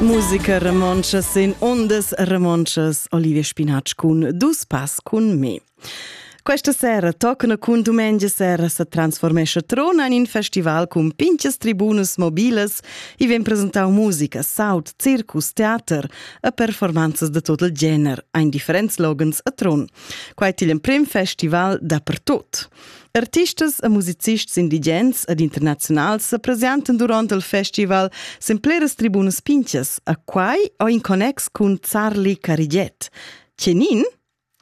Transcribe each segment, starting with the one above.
Musiker romontschas sin ondas romontschas Olivia Spinatsch cun dus pass cun me. Questa sera toccano cun domenica sera se transformesce trona in in festival cun pinches tribunas mobiles e vien presentau musica, sound, circus, teater e performanzas de tot il gener, ein differents slogans a tron. Quai til in prim festival dapertot. Artistas e musicists indigens ed internaziunals sa presentan durant il festival sin pleras tribunas pinchas, a quai o in connex cun Zarli Carigiet. Tgenin?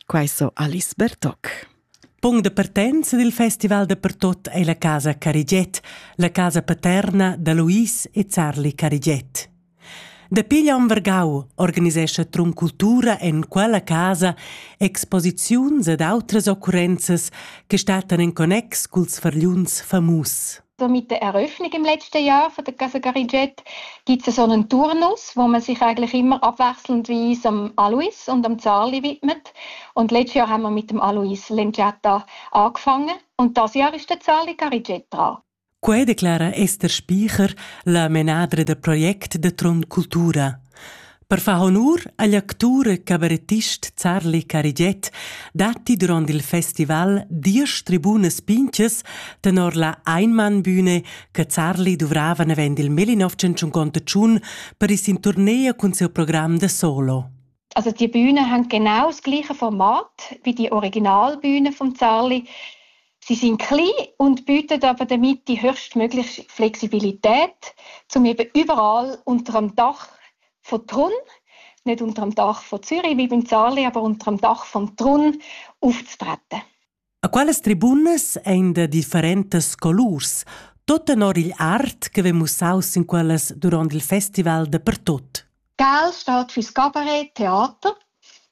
Quai so Alice Bertoc. Punct de partenza del festival de pertot è la casa Carigiet, la casa paterna da Luis e Zarli Carigiet. Dapi Jan Vargau organisescha Trun Cultura en quella casa exposiziuns ed outras occurrenzas che stattan en connex culs fargliuns famus. So mit der Eröffnung im letzten Jahr von der Casa Carigiet gibt es so einen Turnus, wo man sich eigentlich immer abwechselnd wie es am Alois und am Zarli widmet. Und letztes Jahr haben wir mit dem Alois Lenciata angefangen und das Jahr ist der Zarli Carigiet dran. Quei declara Esther Spiecher, la menadra da project da Trond Cultura. Per far honur agl actur e cabarettist Zarli Carigiet datti durant il festival diesch tribunas pinchas tenor la Einmannbühne che Zarli duvrava avend il 1951 per is in tournea cun siu program da solo. Also die Bühne hängt genau das gleiche Format wie die Originalbühne von Zarli. Sie sind klein und bieten aber damit die höchstmögliche Flexibilität, um eben überall unter dem Dach von Trun, nicht unter dem Dach von Zürich wie beim Zarli, aber unter dem Dach von Trun aufzutreten. A quelles tribunas ein de differentas colurs, tot tenor il art che ve mussaus in quellas durant il festival de pertot. Gal stat für Scabaret, Theater.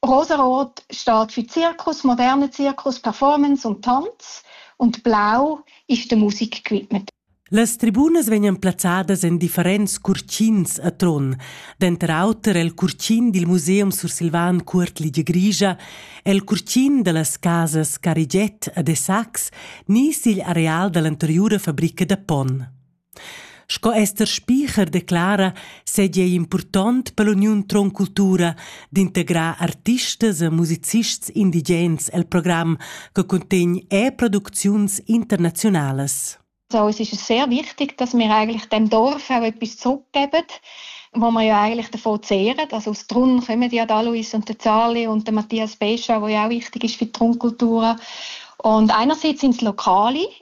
Rosarot stat für Zirkus, moderne Zirkus, Performance und Tanz. Und blau ist der Musikgewidmet. Las tribunas vegnan plazzadas en differents curtins a Trun, denter auter el curtin dil Museum sursilvan Cuort Ligia Grigia, el curtin dallas casas Cariget a De Sax ni sigl areal dall'anteriura fabrica da ponn. Sco Esther Spiecher declara seigi ei impurtont per l'uniun Tron Cultura d'integrar artistas e musicists indigens el program che cuntegn e producziuns internaziunalas. So, es ist sehr wichtig, dass wir eigentlich dem Dorf auch etwas zurückgeben, wo wir ja eigentlich davon zehren. Also aus Trun kommen ja der Alois und der Zali und der Matthias Bescher, der ja auch wichtig ist für die Trunkultur. Und einerseits sind es Lokale,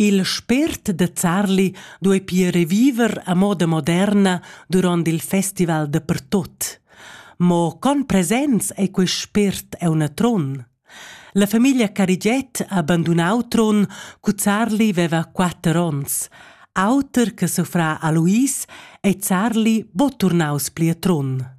Il spért da Zarli duei pia reviver a moda moderna duront il festival dapertut. Mo con presents ei quei spért auna tron? La famiglia Carigiet ha bandunau Tron cu Zarli veva quatter onns. Auter che suffrà a Luis ei Zarli bo turnaus pli a Tron.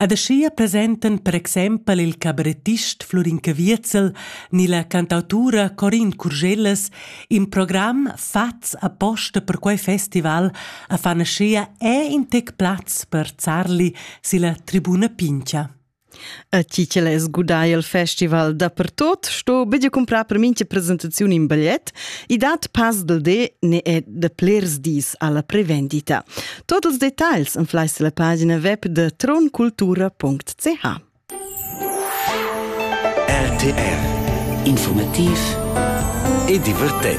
Ed aschia presentan per exempel il cabarettist Flurin Caviezel ni la cantautura Corin Curgellas in program fatgs aposta per quei festival a fan aschia è in tec plaz per zarli silla tribuna Pincha. A ti che l'hai sgudai il festival dappertot, sto bedia comprar per mincha presentaziun in bigliet. I dat pas del de ne è de plers dis alla prevendita. Tot ils detagls inflais la pagina web de troncultura.ch. RTR Informativ e divertent.